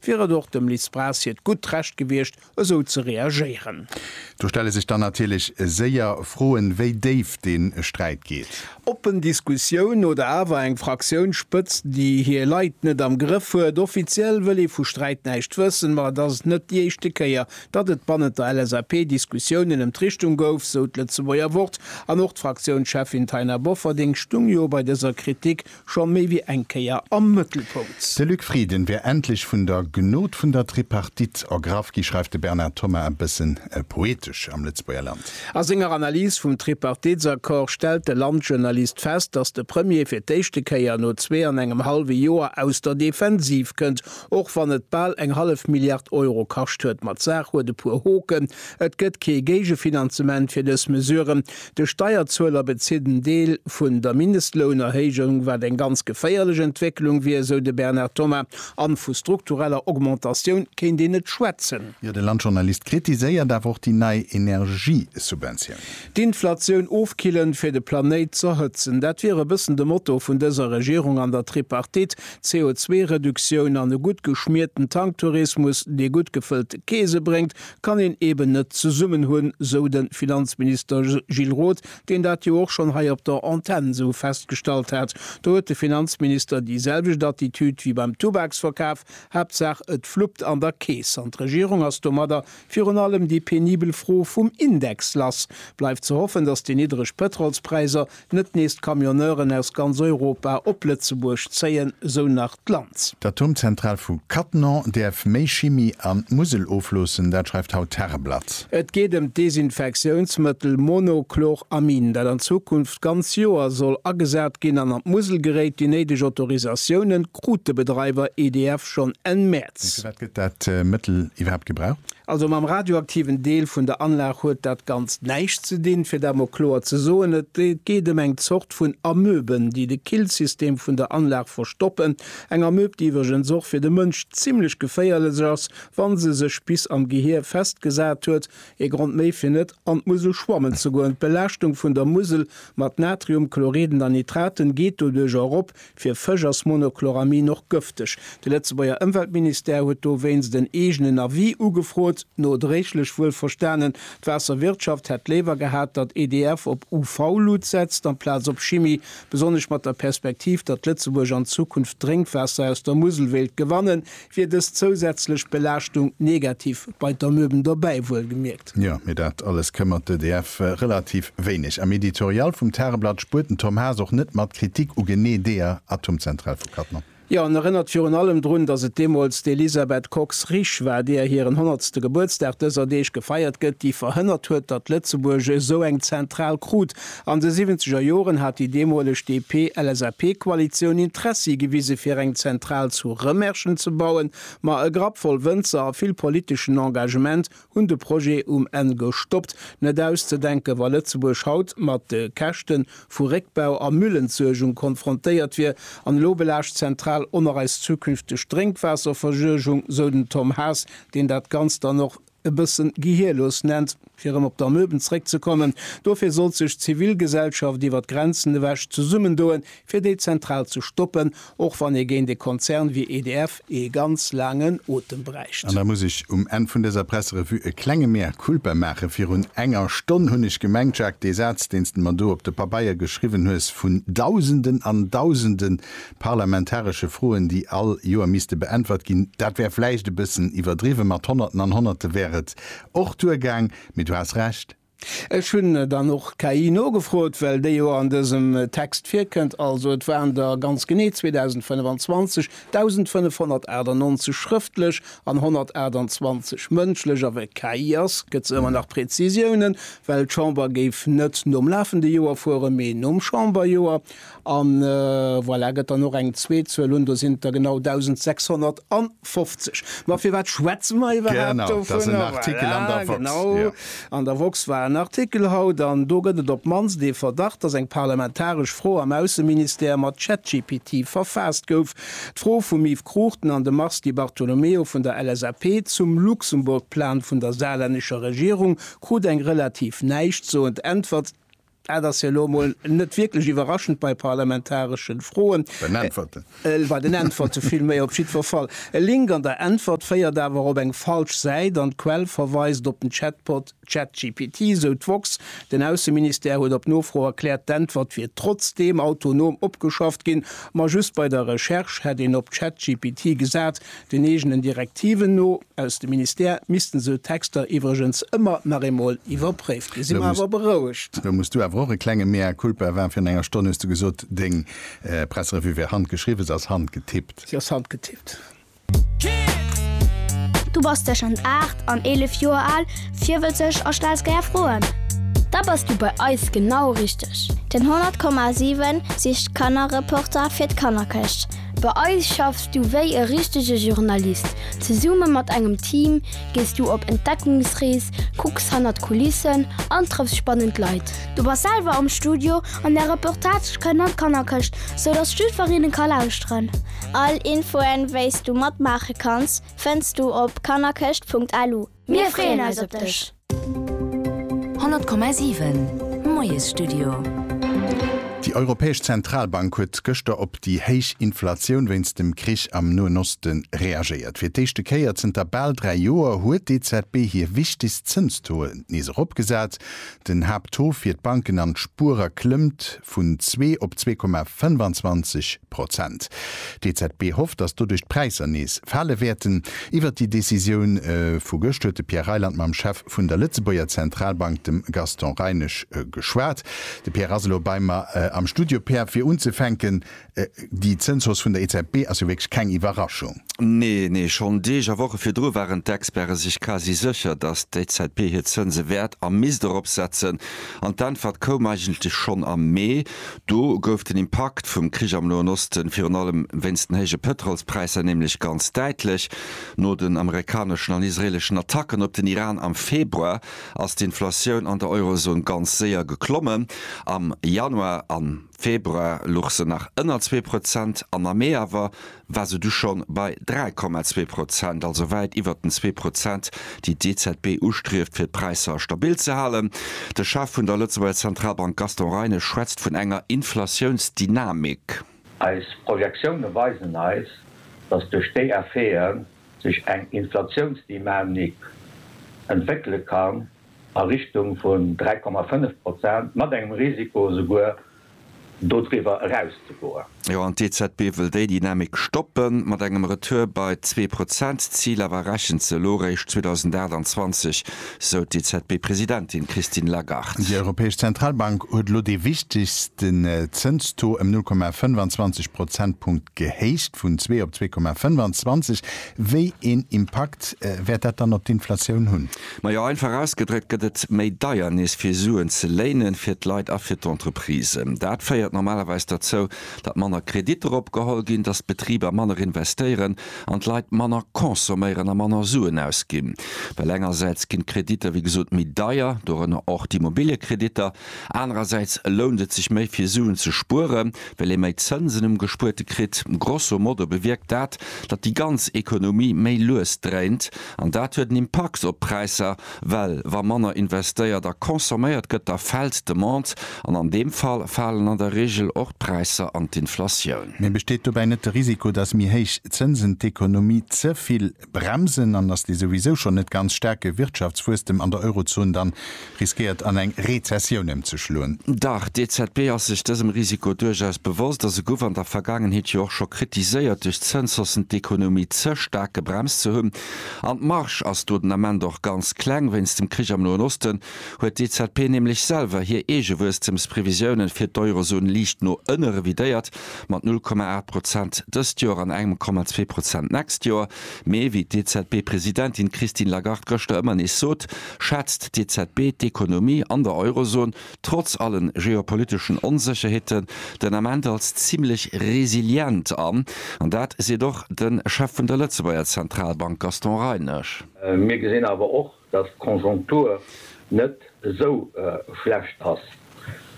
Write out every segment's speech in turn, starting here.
wier et och dem Liz Braz hiert gutt Recht gewiescht, esou ze reagéieren. Do stelle sech dann natierlech séier Froen, wéi déif dee Sträit geet. Oppen Diskussioun oder awer eng Fraktiounsspëtzt, déi hir Leit net am Grëff huet? Offiziell wëll ee vu Sträit näischt wëssen, ma et ass net déi éischte Kéier, datt et bannent der LSAP Diskussiounen ëm d'Richtung gouf, sou d'Lëtzebuerger Wort. An och d'Fraktiounscheffin Taina Bofferding stung jo bei dëser Kritik Scho méi wéi eng Kéier am Mëttelpunkt. De Luc Frieden wär endlech vun der Gnod vun der Tripartite ergraff gi, schreift de Bernard Thoma e bësse poetesch am Lëtzebuerger Land. A senger Analys vum Tripartitsaccord stellt de Landjournalist fest, datt de Premier fir d'éischte Kéier no zwee an engem hallwe Joer aus der Defensiv kënnt. Och wann et bal eng hallef Milliard Euro kascht huet, ma d'Saach huet e puer Hoken, Et gëtt kee Géigefinanzement fir dës Mesure, De Steierzueler bezitt en Deel vun der Mindestlounerhéijung, wat eng ganz geféierlech Entwécklung wier, esou de Bernard Thomas. A vu struktureller Augmentatioun kéint een net schwätzen. Jo, de Landjournalist kritiséiert awer och déi nei Energiesubventioun. D'Inflatioun ofkillen, fir de Planéit z'erhëtzen, dat wier e bëssen de Motto vun dëser Regierung an der Tripartite. CO2-Reduktioun an e gutt geschmierten Tanktourismus, dee gutt gefëllte Keese bréngt, kann een eben net zesummen hunn, sou de Finanzminister Gilles Roth, deen dat jo och schonn hei op der Antenn esou festgestallt hat. Do huet de Finanzminister déi selwecht Attitüd wéi beim Tubaksverkaf, Haaptsaach et fluppt an der Keess. An d'Regierung ass domadder virun allem déi penibel Fro vum Index lass. Bleift ze hoffen, datt déi niddreg Pëtrolspräisser Net nees d'Camionneuren aus ganz Europa op Lëtzebuerg zéien, sou nach d'Land. D'Atomzentral vu Cattenom däerf méi Chimie an d'Musel ofloossen, dat schreift haut d'Tageblatt. Et geet ëm d'Desinfektiounsmëttel Monochloramin, dat an Zukunft ganz Joer soll agesat ginn an an d'Musel geréit. Déi néideg Autorisatioune krut de Bedreiwer EDF schonn Enn Mäerz. Mee firwat gëtt dat Mëttel iwwerhaapt gebraucht? Also mam radioaktiven Deel vun der Anlag huet dat Ganzt näischt ze dinn, fir dat mol kloer ze soen. Et geet ëm eng Zort vun Amöben, déi de Killsystem vun der Anlag verstoppen. Eng Amöb, déi iwwregens och fir de Mënsch zimlech geféierlech ass, wa se sech bis am Gehier festgesat huet. Ee Grond méi fir net an d'Musel schwammen ze goen. D'Belaaschtung vun der Musel mat Natriumchlorid an Nitraten geet doduerch erop, Fir Fësch ass Monochloramin och gëfteg. De Lëtzebuerger Ëmweltministère huet dowéinst en eegenen Avis ugefrot. Nodréiglech wuel verstanen, d'Waasserwirtschaft hätt léiwer gehat, datt EDF op UV-Lut setzt amplaz op Chimie, besonnesch mat der Perspektiv, datt Lëtzebuerg an Zukunft Drénkwaasser aus der Musel wéilt gewannen, Wier dës zousätzlech Belaaschtung negativ, bei d'Amöben dobäi wuelgemierkt? Jo, mee dat alles këmmert d'EDF relativ wéineg. Am Editorial vum Tageblatt spuert den Tom Haas och net mat Kritik u genee deeër Atomzentral vu Cattenom. Jo, en erënnert virun allem drun, datt et deemools d'Elisabeth Kox-Risch war, deeër hiren honnertste Gebuertsdag dëser Deeg gefeiert gëtt, déi verhënnert huet, datt Lëtzebuerg esou eng Zentral krut. An de siwwenzeger Joren hat déi deemoleg DP-LSAP-Koalitioun Interessi gewise fir eng Zentral zu Rëmerschen ze bauen, ma e Grapp voll Wënzer a vill politeschen Engagement hunn de Projet um Enn gestoppt. Net auszedenken, wa Lëtzebuerg haut mat de Käschte vu Réckbau a Müllentsuergung konfrontéiert wier. An elo belaascht d'Zentral och nach eis zukünfteg Drénkwaasserversuergung, sou den Tom Haas, deen dat Ganzt dann och e bëssen gehirlos nennt, fir erëm op d'Amöben zréckzekommen. Dofir sollt sech d'Zivilgesellschaft iwwer d'Grenzen ewech zesummendoen, fir déi Zentral ze stoppen, och wann ee géint e Konzern wéi EDF ee ganz laangen Otem bräicht. An da muss ech um Enn vun dëser Presserevue e klenge Mea culpa maachen. Virun enger Stonn hunn ech gemengt, Jacques, dee Saz, deen s de mer do op de Pabeier geschriwwen hues, vun Dausenden an Dausenden parlamentaresche Froen, déi all Joer misste beäntwert ginn. Dat wär vläicht e bëssen iwwerdriwwe mat Honnerten an Honnerte wär et och duergaang, mee du has Recht. Ech hunn dann och KI nogefrot, well déi jo an dësem Text virkënnt. Also et waren der ganz genee 2025 1.598 schrëftlech an 128 mëndschlech. A well et KI ass, gëtt se ëmmer nach Prezisiounen, well d'Chamber géif net nom lafende Joer fueren, mee nom Chamberjoer. A voilà, gëtt dann och eng zweet Zuel un, do sinn der genau 1.650. Ma firwat schwätze mer iwwerhaapt dovun? Voilà, genau, an der woxx war en Artikel haut, an do gëtt et op d'mannst ee Verdacht, datt eng parlamentaresch Fro am Ausseministère mat ChatGPT verfaasst gouf. D'Fro vum Yves Cruchten an dem Mars Di Bartolomeo vun der LSAP zum Luxemburg-Plan vun der saarlännescher Regierung krut eng relativ näischtsoend Äntwert, Dat ass jo elo emol net wierklech iwwerraschend bei parlamentareschen Froen. Bei den Äntwerten. Bei den Äntwerte villméi. Op jiddwer Fall, e Link an der Äntwert féiert awer op eng falsch Säit an d'Quell verweist op den Chatbot ChatGPT, sou d'woxx. Den Ausseministère huet op Nofro erkläert, d'Äntwert wier trotzdeem autonom opgeschafft ginn, ma just bei der Recherche hätt een op ChatGPT gesat. Den eegenen Direktiven no. Aus dem Ministère missten sou Texter iwwregens ëmmer nach eemol iwwerpréift ginn. Si mer awer berouegt. Lo muss du awer och e klenge Mea Culpa wan. Virun enger Stonn hues du gesot, deng Presserevue wär handgeschriwwen. Se ass handgetippt. Se ass handgetippt. Du bass tëschent 8 an 11 Joer al, virwëtzeg a stells gär Froen? Da bass du bei eis genau richteg! Den 100,7 sicht Kannerreporter fir d'Kannerkëscht. Bei eis schaffs du wéi e richtege Journalist. Zesumme mat engem Team gees du op Entdeckungsrees, kucks hannert d'Kulissen an trëffs spannend Leit. Du bass selwer am Studio an där Reportage kënnt an d'Kannerkëscht, sou dass jidfereen e ka lauschteren. All Infoen, wéis du matmaache kanns, fënns du op kannerkëscht.lu. Mir freeën eis op dech! 100,7 Moiesstudio. Déi Europäesch Zentralbank huet gëschter op déi héich Inflatioun wéinst dem Krich am Noen Oste reagéiert. Fir d'éischte Kéier zënter bal dräi Joer huet d'EZB hir wichtegst Zënstaux nees eropgesat. Den Haapttaux fir d'Banken an d'Spuerer klëmmt vun zwee op zwee Komma 25 Prozent. D'EZB hofft, datt doduerch d'Präisser nees fale wäerten. Iwwert déi Decisioun vu gëscht huet de Pierre Reyland mam Chef vun der Lëtzebuerger Zentralbank, dem Gaston Reinesch, geschwat. De Pierre ass elo bei mer am Studio. Pierre, fir unzefänken, Déi Zënshausse vun der EZB ass jo wierklech keng Iwwerraschung. Nee, nee. Schonn Deeg a Woche virdru waren d'Experte sech quasi sécher, datt d'EZB hir Zënse wäert a misst erop setzen. An d'Äntwert koum eigentlech schonn am Mee. Do gouf den Impakt vum Krich am Noen Osten, virun allem wéinst den héije Pëtrolspräisser, nämlech ganz däitlech. No den amerikaneschen an israeeleschen Attacken op den Iran am Februar ass d'Inflatioun an der Eurozon ganz séier geklommen. Am Januar an. Februar luch se nach ënner zwee Prozent an am Mee awer war se du schonn bei 3,2 Prozent, also wäit iwwert den zwee Prozent, déi d'EZB ustrieft, fir d'Präisser stabil ze halen. De Chef vun der Lëtzebuerger Zentralbank Gaston Reinesch schwätzt vun enger Inflatiounsdynamik. Eis Projektioune weisen eis, datt duerch déi Effete sech eng Inflatiounsdynamik entwéckele kann, a Richtung vun 3,5 Prozent, mat engem Risiko esouguer dodriwwer erauszegoen. Jo, an d'EZB wëll déi Dynamik stoppen, mat engem Retour bei zwee Prozent. D'Zil awer errechen ze elo réischt 2028, sou d'EZB-Presidentin Christine Lagarde. Déi Europäesch Zentralbank huet elo dee wichtegste Zënstaux ëm 0,25 Prozentpunkt gehéicht, vun zwee op 2,25. Wéi een Impakt wäert dat dann op d'Inflatioun hunn? Majo, einfach ausgedréckt gëtt et méi deier nees fir Suen ze léinen, fir d'Leit a fir d'Entreprisen. Dat féiert normalerweis derzou, datt manner Kreditter opgeholl ginn, datt d'Betriber manner investéieren an d'Leit manner consomméieren a manner Suen ausginn. Well engersäits ginn d'Kreditter wéi gesot méi deier, dorënner och d'Immobiliëkreditter, anerersäits lount et sech méi fir Suen ze spueren, well ee méi Zënsen um Gespuerte kritt. Grosso modo bewierkt dat, datt déi ganz Ekonomie méi lues dréint. An dat huet en Impakt op d'Präisser, well wa manner investéiert a consomméiert gëtt, da fält d'Demande an an deem Fall falen an der Reegel och d'Präisser an d'Inflatioun. Mee besteet dobäi net de Risiko, dass méi héich Zënsen d'Ekonomie ze vill bremsen an dass dee souwisou schonn net ganz staarke Wirtschaftswuesstem an der Eurozon dann riskéiert an eng Rezessioun ëmzeschloen. Dach, d'EZB ass sech dësem Risiko duerchaus bewosst a se guff an der Vergaangenheet jo och scho kritiséiert duerch d'Zënshossen d'Ekonomie ze staark gebremst ze hunn. An d'Marge ass do den Ament och ganz kleng. Wéinst dem Krich am Noen Osten huet d'EZB nämlech selwer hir eege Wuesstemsprevisiounen fir d'Eurozon liicht no ënne revidéiert, mat 0,8 Prozent dëst Joer an engem Komma zwee Prozent d'nächst Joer. Mee wéi d'EZB-Presidentin Christine Lagarde gëschter ëmmer nees sot, schätzt d'EZB d'Ekonomie an der Eurozon, trotz allen geopoliteschen Onsécherheeten, den Ament als zimmlech resilient an. An dat seet och de Chef vun der Lëtzebuerger Zentralbank Gaston Reinesch. Mir gesinn awer och, datt d'Konjonktur net esou schlecht ass.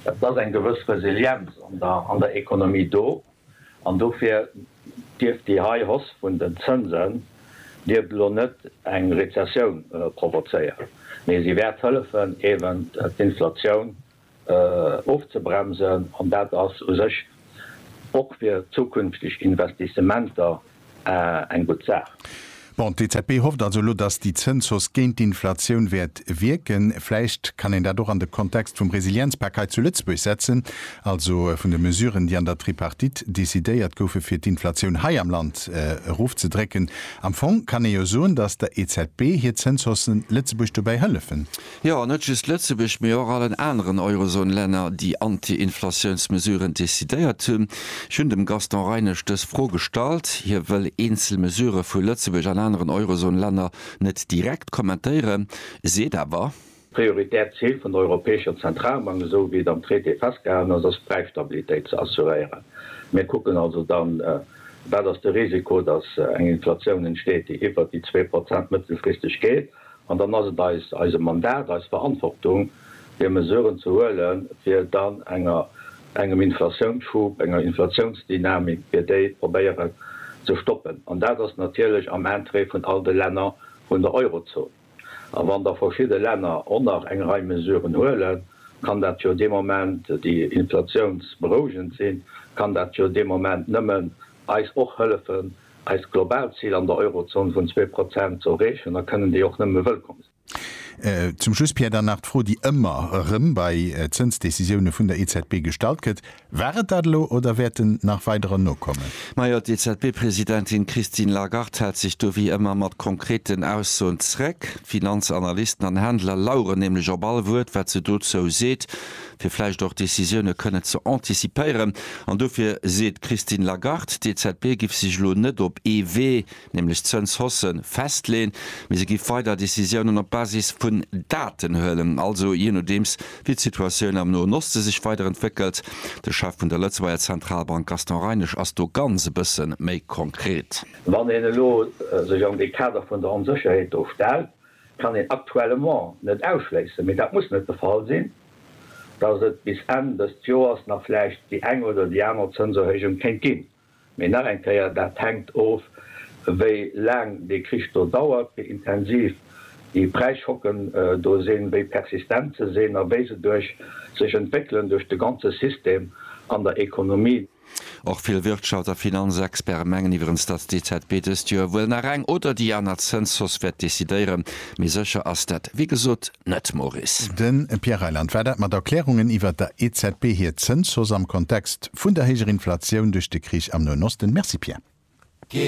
Et ass eng gewëss Resilienz an der Ekonomie do. An dofir dierf déi hei Hausse vun den Zënsen dierf elo net eng Rezessioun provozéieren, mee se wäert hëllefen eben d'Inflatioun ofzebremsen an dat ass u sech och fir zukünfteg Investissementer eng gutt Saach. Bon, d'EZB hofft also elo, datt déi Zënshausse géint d'Inflatioun wäert wierken. Vläicht kann een dat och an de Kontext vum Resilienzpak hei zu Lëtzebuerg setzen, also vun de Mesuren, déi an der Tripartite decidéiert goufen, fir d'Inflatioun hei am Land erofzedrécken. Am Fong kann ee jo soen, datt der EZB hir Zënshaussen Lëtzebuerg dobäi hëllefen. Jo, an net just Lëtzebuerg, mee och allen aneren Eurozone-Länner, déi Anti-Inflatiounsmesuren decidéiert hunn. Ech hunn dem Gaston Reinesch dës Fro gestallt. Hie wëll eenzel Mesurë vu Lëtzebuerg an aneren Eurozone-Länner net direkt kommentéieren, seet awer. D'prioritäert Zil vun der Europäescher Zentralbank, esou wéi et am Traité festgehalen ass, ass d'Präisstabilitéit ze assuréieren. Mir kucken also dann, wat ass de Risiko, datt eng Inflatioun entsteet, déi iwwert déi zwee Prozent mëttelfristeg geet. An dann ass et eis, eise Mandat, eis Verantwortung, fir Mesuren ze huelen, fir dann enger, engem Inflatiounsschub, enger Inflatiounsdynamik, fir déi probéieren ze stoppen. An dat ass natierlech am Interêt vun all de Länner vun der Eurozon. A wann da verschidde Länner och nach eng Rei Mesuren huelen, kann dat jo dee Moment, déi inflatiounsberouegend sinn, kann dat jo dee Moment nëmmen eis och hëllefen, eist globaalt Zil an der Eurozon vun zwee Prozent ze erreechen, da kënnen déi och nëmme wëllkomm sinn. Zum Schluss, Pierre, dann nach d'Fro, déi ëmmer erëm bei Zënsdecisioune vun der EZB gestallt gëtt, War et dat elo oder wäerten nach weiderer nokommen? Majo, d'EZB-Presidentin Christine Lagarde hält sech do wéi ëmmer mat konkreten Aussoen zréck. D'Finanzanalysten an Händler laueren nämlech op all Wuert, wat se dozou seet. fir vläicht och Decisioune kënnen ze anticipéieren. An dofir seet d'Christine Lagarde, d'EZB giff sech elo net op ee Wee, nämlech Zënshausse festleeën, mee se giff weider Decisiounen op Basis vun Daten huelen, also jee nodeems wéi d'Situatioun am Noen Oste sech weider entwéckelt. De Chef vun der Lëtzebuerger Zentralbank Gaston Reinesch ass do ganz e bësse méi konkret. Wann een elo sech an dee Kader vun der Onsécherheet do stellt, kann een actuellement net ausschléissen, mee dat muss net de Fall sinn, dass et bis Enn dëst Joers nach vläicht déi eng oder déi aner Zënserhéijung kéint ginn. Mee nach eng Kéier, dat hänkt of, wéi laang dee Krich do dauert, wéi intensiv déi Präisschocken do sinn, wéi persistent se sinn a wéi se duerch sech entwéckelen duerch de ganze System an der Ekonomie. Och vill Wirtschafts a Finanzexperte mengen iwwerens, datt d'EZB dëst Joer wuel nach eng oder déi aner Zënshausse wäert decidéieren, mee sécher ass dat wéi gesot net, Maurice. De Pierre Reyland, War dat mat Erklärungen iwwert der EZB hir Zënshausse am Kontext vun der héijer Inflatioun duerch de Krich am Noen Osten? Merci Pierre.